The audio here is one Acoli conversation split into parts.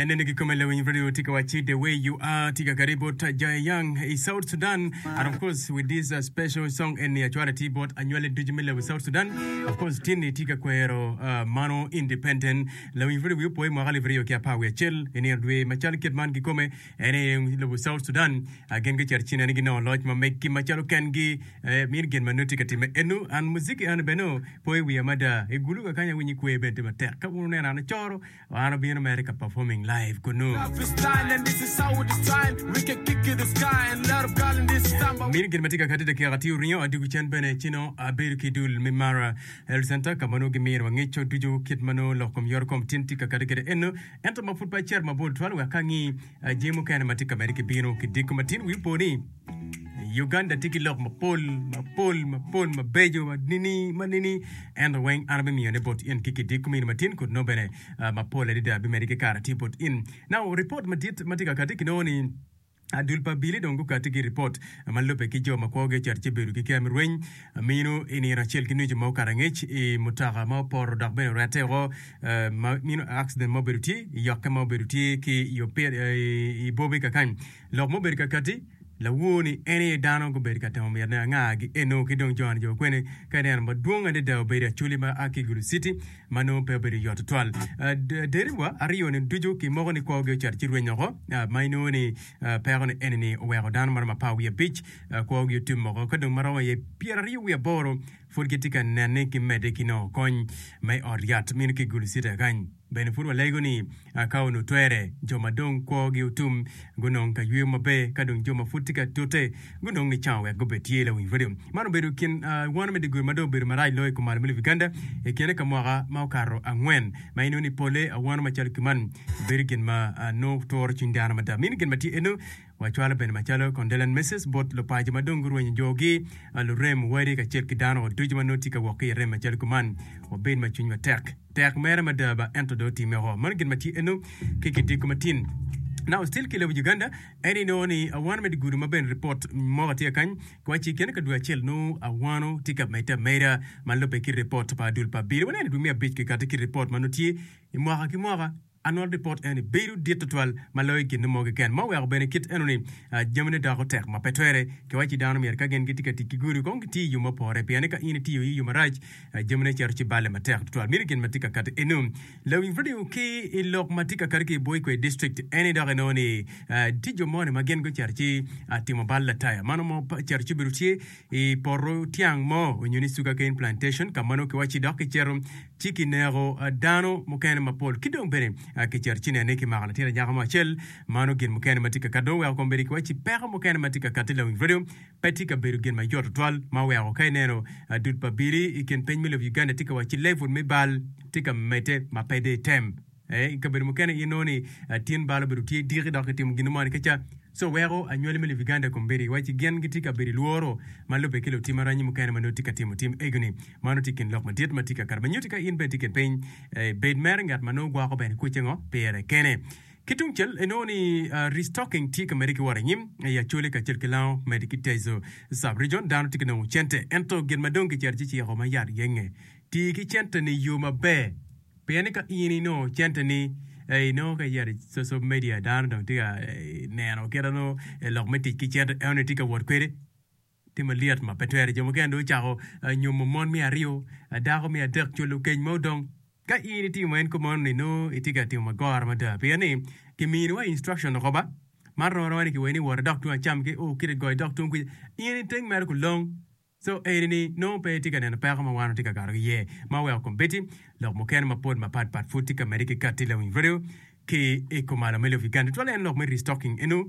Anene ki kome lawiny radio tika wachi the way you are tika kari bot Jaya Young i South Sudan and of course with this uh, special song and ya chwara ti bot anywale ducu me lewi South Sudan of course tini tika kwero uh, mano independent lawiny radio wiyo poe mwaka alip aryo ki apar wiye cel i nino dwe macal kit man ki kome En aye lobo South Sudan gin gucito cina ni ginongo loc ma meggi macalo kengi. Eh, mini gin ma nongo tye ka timme eno. An muziki an bene o po i wiya mada. I guluka kany awinyo kwer bene tye matek. Ka wun wuneno an acoro, an abino mere ka performing live kunu. Mini gin ma tye ka kati dakika tye oringo adiko cen bene ci nongo abedo ki i dul me Mara Health Center ka ma nongo gimino wangeco ducu kit ma nongo lok kom yorokom tin tye ka kati kwede eno. ento ma pud pe acito mabor tutwal wek angi jami mukene ma tye ka medde ki bino. Ki diko matin wi opo ni Uganda tye ki lok mapol, mapol, mapol mabeco, ma nini, ma nini, ento weng an abimiyo ne bot in ki ki diko mini matin kut nongo bene mapol adada bimedi ki kare tye bot in. Now, report madit ma tye ka kati ki nongo ni Adul pa Billy dong gukatti ki ripot ma lubbe ki jo ma kwogi ocito ci bedo ki kem rweny mino i nino acel ki nucu ma okato angec i mutoka ma opoto dok bene orette woko ma mino accident ma obedo tye i yokke ma obedo tye ki i Bobi kakany lok ma obedo kakati lawor ni en aye dano gubedo ka temo mitone anga gi eno ki dong Joan Joe Okwene ka ineno madwong adada obedo i Acholi ma a ki Gulu City ma nongo pe obedo yot tutwal. Derewa aryo-ni ducu ki moko ni kwogi ocito ci rweny oko, ma inongo ni peko ni eni ni oweko dano maromo apar wiye abic kwogi otim oko. Ka dong maromo iye pyeraryo wiye aboro pud gitye ka nenne ki medde ki nongo kony ma i ot yat meno ki Gulu City kany. Bene pud walego ni Ka onongo twere, jo ma dong kwogi otum gunong ka yweyo maber, ka dong jo ma pud tye ka tute gunong nicango wek gubed tye lawiny redio. Man obedo kin one me dyegur ma dong obedo marac loyo i kom malo me lobo Uganda i kine ka mwaka ma okato angwen, ma inongo ni polle awono macalo kiman bedo gin ma nongo turo cwiny dano mada. Mini gin ma tye eno. Wacwalo bene macalo Condelan Messes bot lupaco ma dong gurwenyo jogi, lurem, wadi, kacel ki dano ducu ma nongo tye ka wok ki i rem macalo kuman. Wabed ma cwinywa tek. Tek mere mada ba ento dong otimme woko. Mano gin ma tye eno ki gidiko matin. Now still ki lobo Uganda en i nongo ni awano me digudu ma bene report moka tye kany ki waci kene ka dwe acel nongo awano tye ka medde ameda ma lube ki report pa dul pa abiro waneno i dwe me abic kikati ki report ma nongo tye i mwaka ki mwaka. Annual Report eni bedo dit tutwal ma loyo gin mo keken, ma oweko bene kit enoni jamine doko tek ma pe twere. Kiwacci dano myero ka gin gitye ka tic ki gudo kong giti i yo ma opore, pien ni ka in itiyo aye i yo marac, jamine cito ci balle matek tutwal. Miti gin ma tye ka kati eno. Lawiny radio ki i lok ma tye ka kati ki i bwo i kwe district eni dok inongo ni tye jo moni ma gin gucito ci timo bal lataya. Mano mo cito ci obedo tye i poto tyang mo onyo ni sugar cane plantation ka ma nongo kiwacci dok kicito ci kineko dano mukene mapol, ki dong bene kiceto cine ni kimako latin anyaka mo acel. Mano gin mukene ma tye ka kat. Dong weko kombeddi kiwacci peko mukene ma tye ka katti lawinj redio pe tye ka bedo gin mayot tutwal, ma oweko ka ineno dul pa abili i kin piny me lobo Uganda tye ka wacci level me bal tye ka medde ma pe dei tem. I kabedo mukene inongo ni tin bal obedo tye diki dok kitimo gin mo ni kica. Co weko anywali me Libiganda kombeddi iwacci gin gitye ka bedo i lworo ma lubbe ki lutim aranyi mukene ma nongo tye ka timo tim egoni. Mano tye i kin lok madit ma tye ka kato. Me nyutti ka in bene itye kipiny, bed mere ngat ma nongo gwoko bene kwece ngo pire kene. Ki tungcel inongo ni restocking tye ka medde ki wot anyim i Acholi kacel ki Lango med ki Teso Sub-Region. Dano tye ka nongo cente ento gin ma dong kicito ci ciko ma yat genge tii ki cente ni yo maber. Pien ni ka in inongo centeni i nongo ka iyero i social media dano dong tye ka neno kit ma nongo lok me tic ki cente eno ni itye ka wot kwede tye malyet ma pe twere. Jo mukene dong ocako nyomo mon me aryo, dako me adek, cwalo keny ma odong. Ka in itimo en kop meno ni nongo itye ka timo magora mada pien ni kimini wa instruction woko ba man rom aroma ni kiweri ni wot idok tung acam ki o kit igoyo dok tung kwica in iteng mere kulong. Co eni-ni nongo pe tye ka neno peko ma wan watye ka kato ki iye, ma oweko kombeddi lok mukene mapol mapat pat pud tye ka medde ki katti lawiny redio ki i kumalo me lok Uganda. Twala en lok me restocking eno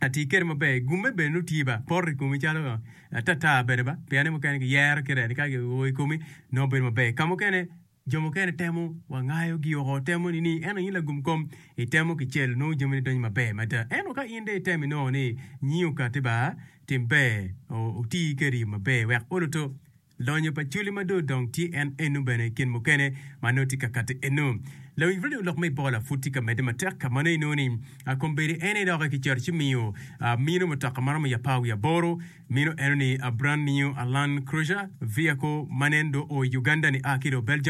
atii kede maber, gumme bene nongo tye ba poto i komi calo ata ata bene ba, piane mukene ki yero kit eni ka ki oo i komi nongo bedo maber. Kamukene. Jo mukene temo wa ngayo gi oko temo ni ni en aye lagum kom i temo ki cel nongo jami ni donyo maber mada ento ka in dong itemo inongo ni nyi okati ba tim ber oti keri maber wek oluto lonyo pa culi ma dong odong tye en eno bene kin mukene ma nongo tye ka kati eno lawinj radio lok me bola pud tye ka mede matek ka mano inongo ni akombedi en aye doki ki cito ci miyo mino mutoka ma romo i apar wiye aboro mino eno ni brand new Land Cruiser vehicle ma nen dong oo i Uganda ni a ki dong Belgium